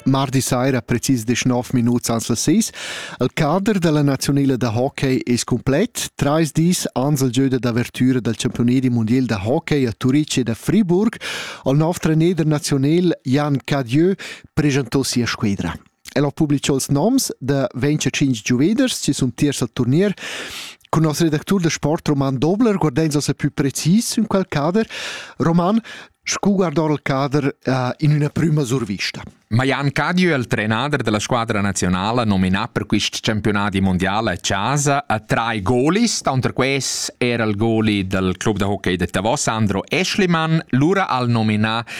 Mardi saira, precis deschnov minuts ans las seis, il cader da la naziunila da hockey es cumplet. Trais dis ans il gieu d'avertüra dal campiunedi mundial da hockey a Turitg ed a Friburg. Il nov treneder naziunel Jan Cadieu preschantò sia squedra. El ha publicà ils noms da 25 giuveders che sun tiers al turnier. Cun nos redactur da sport Roman Dobler guardains ossa pü precis in quel cader. Roman, scu guardar il cader uh, in üna prüma survista? Ma Jan Cadiu è il trenader della squadra nazionale nominà per quest campionati mondiale a casa a tre golis, contro questi era il goli del club da hockey de Tavos Andro Eschlimann, lura al nominà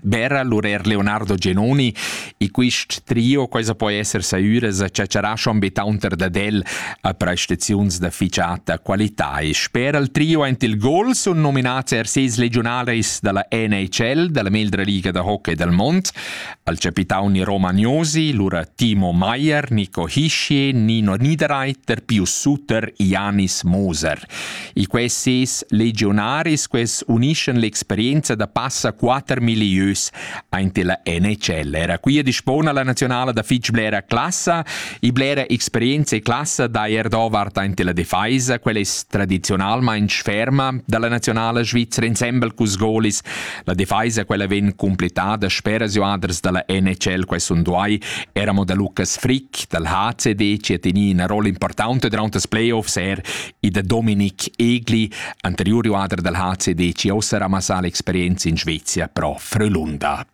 Bera l'urer Leonardo Genoni e quist trio quai po esser saiuras a ciaciarascio ambitaunter dad el a prestaziuns da ficiata qualità e sper al trio aint il gol sun nominats er ses legionales da la NHL, da la meglra liga da hockey dal mond, al capitauni Romagnosi, lura Timo Maier, Nico Hischier, Nino Niederreiter, Pius Suter, Janis Moser. E quels ses legionaris quels unischan l'experienza da passa quatter milieus aint la NHL. Era qui dispona la nazionala da fitch blera classa e blera experienza e classa da Erdovart aint la defeisa, quella es tradizionalmaing ferma dalla nazionala svizzera insembel cus golis La defaisa quella vegn completada speras joaders dalla NHL quest un duai era mo da Lucas Frick dal HCD che teni una rolla importante durante das playoffs er e da Dominik Egli, anterior joader dal HCD che ossa ramassà l'experienza in Svezia pro Frölunda.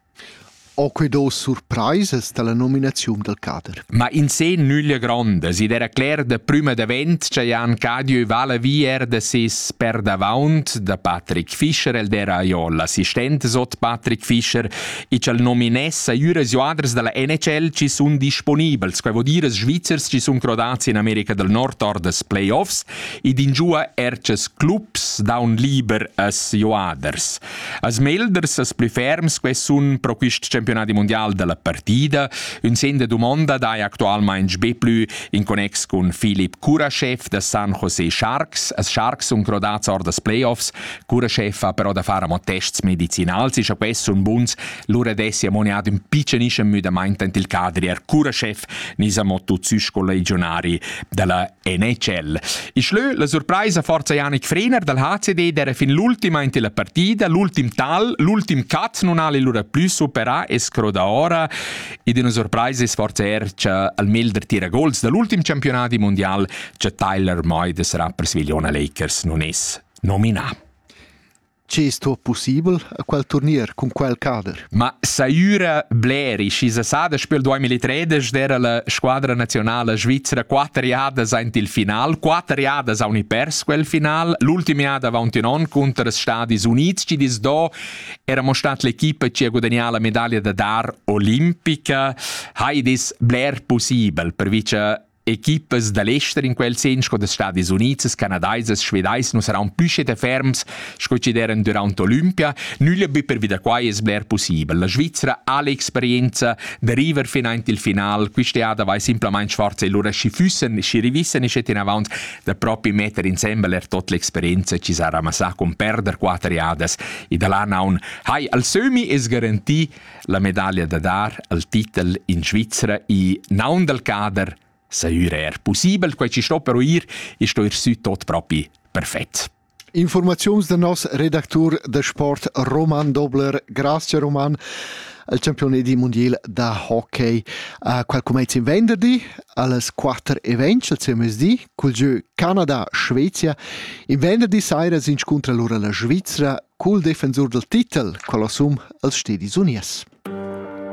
Ho que do surpraisas dalla nominaziun dal cader? Ma in se nüglia grondas, id era cler da prüma davent cha Jan Cadieu vala vi er da ses perdavaunt da Patrick Fischer, el d'era jo l'assistent sot Patrick Fischer, e ch'el nominessa üras joaders dalla NHL chi sun disponibels, quai vo dir as Svizzers chi sun crodats in America del Nord or das playoffs, ed in giua er ces clubs daun liber as joaders. Als melders als plü ferms quais sun pro quist campionadi mundial da la partida, ün sen da dumonda daja actualmaing be plü in connex cun Filip Kurashev da San Jose Sharks. As Sharks sun crodats or das Playoffs. Kurashev ha però da far amo tests medicinals e scha quai sun buns, lura dess i amoniat ün pitschenischem müdamaint ant il cadri. Er Kurashev ni sa mo tuts sü sco legionari della NHL. Ich lö la surpraisa forza Janik Frener dal HCD d'era fin l'ultima in la partida, l'ultim tal, l'ultim cut non ha lura plü supera e scroda ora ed una surpraisa sforza ercia al melder tira gols dall'ultim campionat mondial che Tyler Moy de sarà per Svigliona Lakers non es nominà. Che es tuot pussibel a quel turnier cun quel cader? Ma saiura bleri chi se sa da spel 2013 d'era la squadra nazionala svizra quatter jadas aint il final, quatter jadas haun i pers quel final, l'ultima jada avaunt ün on conter Stadis Units chi dis do era mo stat l'equipa chi ha gudagnà la medaglia da dar olimpica. Hai dis bler pussibel per vice Equipas da l'ester in quel sen sco da Stadis Unids, Canadaisas, Svedais nu saran plü schet ferms sco chi d'eran durant l'Olympia, nüglia be pervi da quai es bler pussibel. La Svizzera ha l'experienza da river finanti il final, quist'eada vai simplamaing forza e lura schi füssen, schi rivissen e schet inavant da propi metter insembel er tot l'experienza chi s'ha ramassà con perder quatter jadas e da là naun hai al sömi es garantì La medaglia da dar al titel in Svizzera i naun dal cader Saiur er possibel, quai ci sto però ir e sto ir sü tot propi perfett. Informaziuns da nos redactur da sport Roman Dobler. Grazie Roman al campione di mondial da hockey. Uh, qual comezza in venderdi? Alles quatter events al CMSD, cul giö Canada, Svezia. In venderdi saira s'inscuntra lura la Svizra cul defensur dal titel, quella sum als Stedis Unies.